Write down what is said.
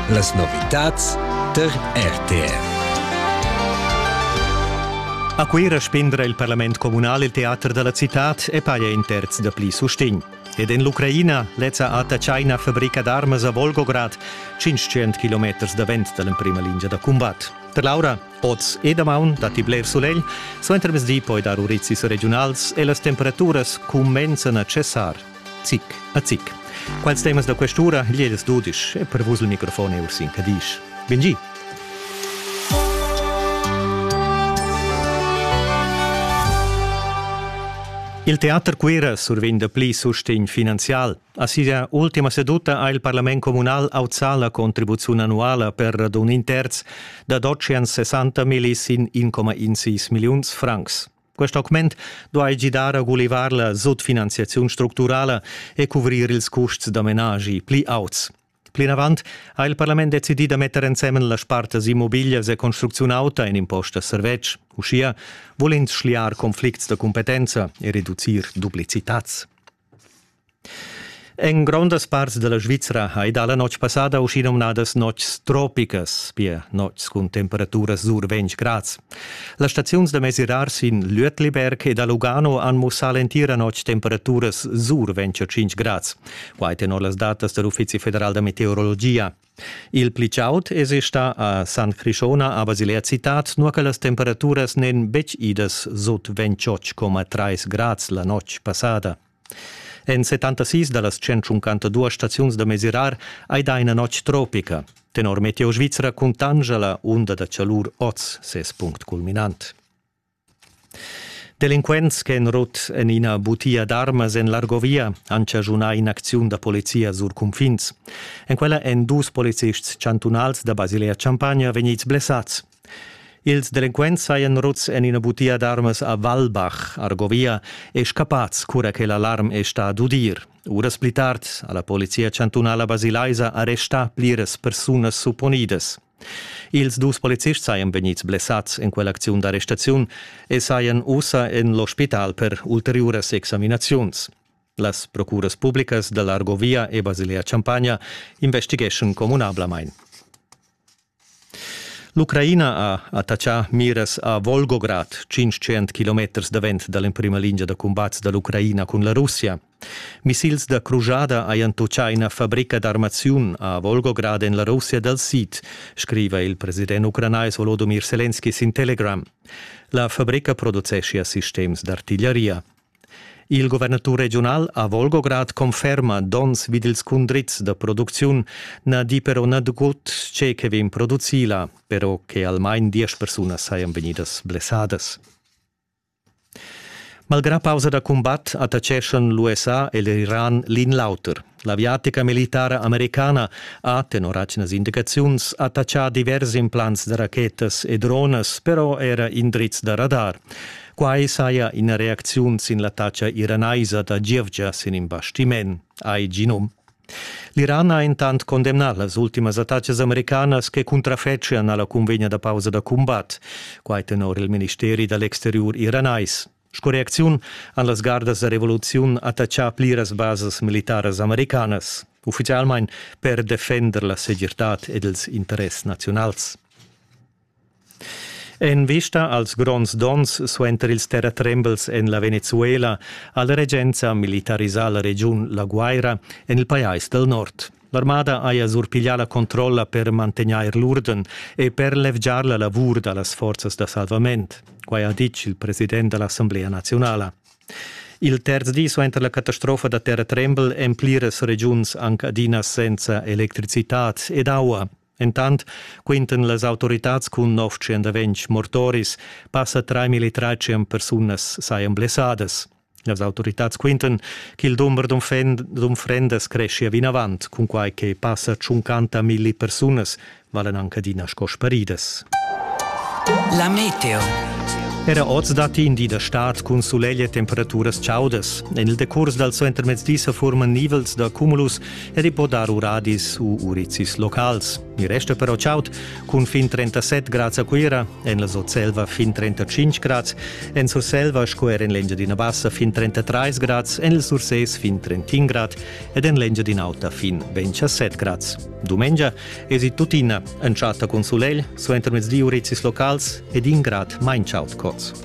Las novitads tar RTR. A Cuira spendra il parlament communal il teater dalla citad e paja in terz da pli sustegn. Ed en l'Ucraina, lezza ata China fabrica d'armas a Volgograd, 500 km davent dall'emprima lingia da combat. Per Laura, oz e damaun datti bler sulegl, suenter mezdi poi dar urizis regionals e las temperaturas cumenzan a cessar. Zic a zic. Quels temas da quest'ura liedes dudisch e per vus il microfon è Ursin Cadisch. Bengi! Il teater Cuira survegn dapli sustegn finanzial. A sia ultima seduta ha il parlament communal auzà la contribuziun annuala per radun in terz, dad 860 millis in 1,16 milliuns francs. Quest augment duai gidar a gulivar la sutfinanziaziun structurala e cuvrir ils custs da menagi pli auts. Plinavant ha il parlament decidì da metter ensemen las spartas immobiglias e construcziun auta in impost a servetsch. Uschia vul ins schliar conflicts da cumpetenza e reducir duplicitats. En grondas parts dalla Svizra hai dalla notg passada uschinumnadas notgs tropicas, pia notgs cun temperaturas sur 20 grads. Las staziuns da mesirar sin Lötliberg e da Lugano han mussà l'entira notg temperaturas sur 25 grads. Quai tenor las datas dall'Uffizi federal da meteorologia. Il pli chaud esi stà a San Crishona a Basilea Citad, nua che las temperaturas n'èn betg idas sut 28,3 grads la notg passada. En 76 da las 152 staziuns da mesirar hai dà ina notg tropica. Tenor Meteo Svizra cuntanscha la unda da chalur oz ses punct culminant. Delinquents ch'han rut en ina butia d'armas en l'Argovia han chaschunà in'acziun da polizia sur cunfins. En quella èn dus policists chantunals da Basilea-Champagna vegnids blessads. Ils delinquents sajan ruts en ina butia d'armas a Walbach, Argovia, e scappads cura che l'alarm è stà d'udir. Uras pli tard ha la polizia chantunala basilaisa arrestà pliras persunas supponidas. Ils dus polizists sajan vegnids blessads en quell'acziun d'arrestaziun e sajan ussa en l'ospital per ulteriuras examinaziuns. Las procuras publicas da l'Argovia e Basilea-Champagna investigeschan communablamain. L'Ucraina ha attachà miras a Volgograd, 500 km davent da l'emprima lingia da cumbat da l'Ucraina cun la Russia. Missils da crujada hajan tutgà ina fabrica d'armaziun a Volgograd en la Russia dal sid, scriva il president ucranais Volodymyr Selenski sin Telegram. La fabrica produceschia sistems d'artigliaria. Il guvernatur regiunal a Volgograd conferma donns vid ils cundrids da producziun na di però nagut tge che vegn producì là, però che almain diesch persunas sajan vegnidas blessadas. Malgrà pausa da cumbat attaccheschan l'USA e l'Iran l'in l'auter. L'aviatica militara americana ha, tenor atgnas indicaziuns, attaccà divers implants da rachetas e dronas, però era indrizs da radar. Quai saja ina reacziun sin l'attacca iranaisa da gievgia sin in bastiment, hai Ginom. L'Iran ha intant condemnà las ultimas attacas americanas che cuntrafetschian a la cunvegna da pausa da cumbat. Quai tenor il ministeri da l'exteriur iranais. Sco reacziun han las gardas da revoluziun attaccà pliras basas militaras americanas, uffizialmain per defender la segirtad ed ils interess naziunals. En vista als gronds donns suenter ils terratrembels en la Venezuela ha la regenza militarisà la regiun La Guaira en il pajais dal nord. L'armada haja surpiglià la controlla per mantegnair l'urden e per levgiar la lavur da las forzas da salvament. Quai ha ditg il president da l'Assemblea naziunala. Il terz di suenter la catastrofa da terratrembel èn pliras regiuns anc adina senza electricitad ed aua. Entant quintan las autoritads cun 920 mortoris, passa 3.300 persunas sajan blessadas. Las autoritads quintan ch'il dumber d'unfrendas creschia vinavant, cunquai che passa 50.000 persunas valen anche adina sco sparidas. La meteo. Era oz datti in di da stad cun sulegl e temperaturas chaudas. En il decurs dal suentermezdi sa furman nivels da cumulus ed i po dar uradis u urizis locals. Il resto però chaut cun fin 37 grads a Cuira, en la Sotselva fin 35 grads, en Surselva sco er en l'Engiadina Bassa fin 33 grads, en il Sursés fin 31 grad ed en l'Engiadina Auta fin 27 grads. Dumengia esi tuttina entschatta cun sulegl, suenter mezdi urizis locals ed in grad main chaut cots.